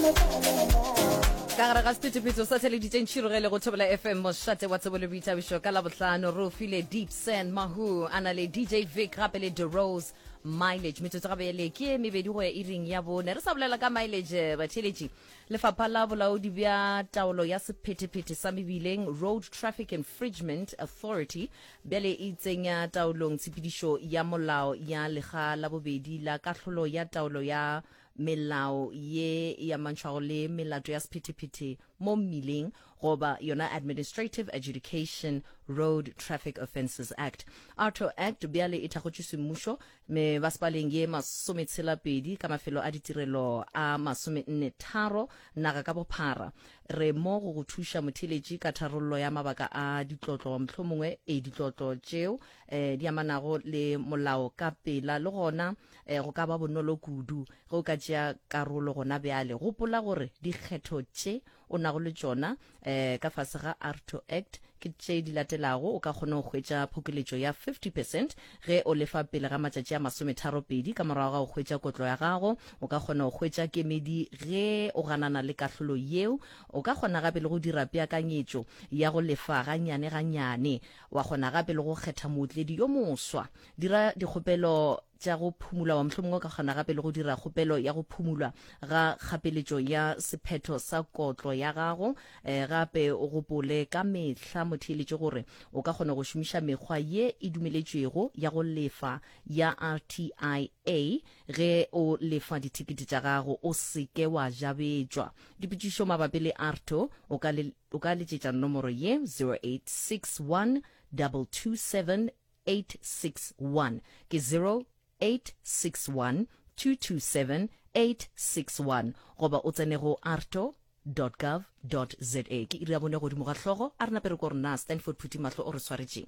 ka gare ga sephethephetho sa theleditseng tšhirogele go thobela fm mošate wa tsebo le boithabišo ka labohlano re o file deep sand mahu a na le dj vic gape le the rose mileage metsotso gabe ya leke ye mebedi go ya iring ya bone re sa bolela ka mileage eh, batheletši lefapha la bolaodi bja taolo ya sephethephethe sa mebileng road traffic infringement authority bjale e tsenya taolong tshepedišo ya molao ya lega la bobedi la kahlolo ya taolo ya melao ye e amantšhwago le melato ya sephethephethe mo mmileng goba yona Administrative Adjudication Road Traffic Offences Act, ARTO Act, bjale e thakgotšwe semmušo mebasepaleng ye masometshela-pedi ka mafelo a ditirelo a masomenne-tharo naga ka bophara. Re mo go go thuša motheeletši ka tharollo ya mabaka a ditlotlo, mohlomongwe e ditlotlo tšeo di amanago le molao ka pela le gona E, go ka ba bonolo kudu ge o ka tšea karolo gona bjale. Gopola gore dikgetho tše o nago le tšona e, ka fase ga ARTO Act ke tše di latelago, o ka kgona go hwetša phokeletšo ya 50 percent ge o lefa pele ga matšatši a masometharo-pedi ka morago ga go hwetša kotlo ya gago. O ka kgona go hwetša kemedi ge o ganana le kahlolo yeo. O ka kgona gape le go dira peakanyetšo ya go lefa gannyane-gannyane. Wa kgona gape le go kgetha mootledi yo moswa. dira dikgopelo tša go phumula wa mohlomongwe o ka kgona gape le go dira kgopelo ya go phumulwa ga kgapeletšo ya sephetho sa kotlo ya gago um gape o gopole ka mehla motheeletše gore o ka kgona go šomiša mekgwa ye e dumeletšwego ya go lefa ya rtia ge o lefa dithekete tša gago o seke wa jabetšwa dipotšišo mabapi le arto o ka letšetša nomoro ye 0861 227 861 ke 0861227861 goba o tsene go arto gov za ke iri ya bone godimo ga hlogo a re nape re ko rena stanford phuthimahlo o re swaretšeng